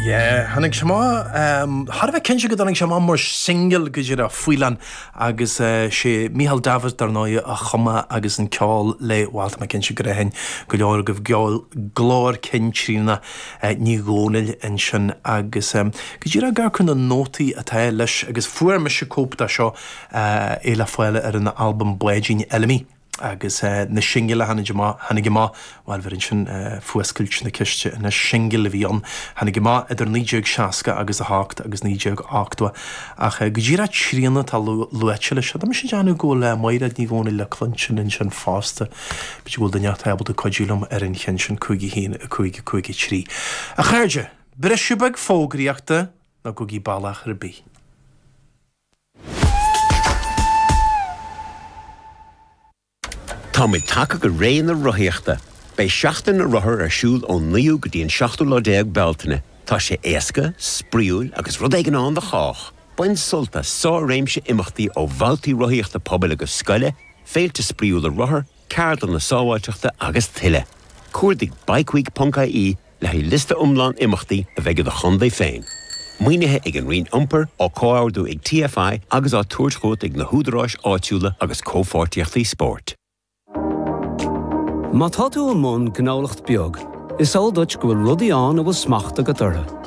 Yeah, tháinig sé amach, thar a bheith cinnte go dtáinig sé amach mar singil go díreach Faoileán agus sé Micheál Davitt dar ndóigh a chum é agus an ceol le, bhail tá mé cinnte gur aithin go leor agaibh glór cinn Tríona Ní Dhomhnaill ansin agus go díreach ag amharc ar na nótaí atá leis agus fuair mise cóip de seo é le fáil ar an albam Báidín Fheilimidh. Agus na singil a tháinig amach, tháinig amach, bhail bheireann sin fuascailt na ceiste na singil a bhí ann, tháinig amach idir 1960 agus a hocht agus 1980, ach go díreach Tríona atá luaite leis seo. Tá mise ag déanamh go bhfuil Maighréad Ní Dhomhnaill le cluinstin ansin fosta, b'fhéidir go bhfuil duine inteacht ábalta cuidiú liom ar an cheann sin, 5-1, 5-5, 3. A chairde, briseadh beag fógraíochta, ná gabhaigí bealach ar bith. Táimid tagtha go ré na rothaíochta. Beidh Seachtain na Rothar ar siúl ón 9ú go dtí an 7ú lá déag Bealtaine. Tá sé éasca, spraíúil agus rud éigin ann do chách! Bain sult as sár-réimse imeachtaí ó bhabhtaí rothaíochta pobail agus scoile, féilte spraíúla rothar, ceardlanna sábháilteachta agus tuilleadh. Cuardaigh Bikeweek.ie le haghaidh liosta iomlán imeachtaí a bheidh i do chontae féin. Maoinithe ag an Roinn Iompair, á comhordú ag TFI agus á tabhairt chugat ag na húdaráis áitiúla agus Comhpháirtíochtaí Spóirt. Má tá tú i mbun gnólacht beag, is eol duit go bhfuil rudaí ann a bhfuil smacht agat orthu.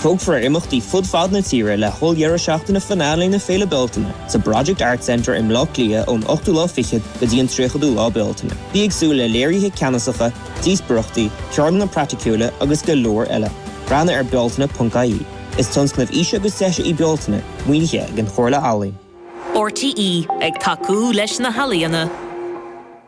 Tógfar ar imeachtaí fud fad na tíre le holldheireadh seachtaine finale na Féile Bealtaine sa Project Arts Centre i mBleá Cliath ón 8ú lá fichead go dtí an 30ú lá Bealtaine. Bí ag súil le léirithe ceannasacha, díospóireachtaí, ceardlanna praiticiúla agus go leor eile. Breathnaigh ar bealtaine.ie. Is tionscnamh aoise agus deise í Bealtaine, maoinithe ag an Chomhairle Ealaíon. RTÉ ag tacú leis na healaíona.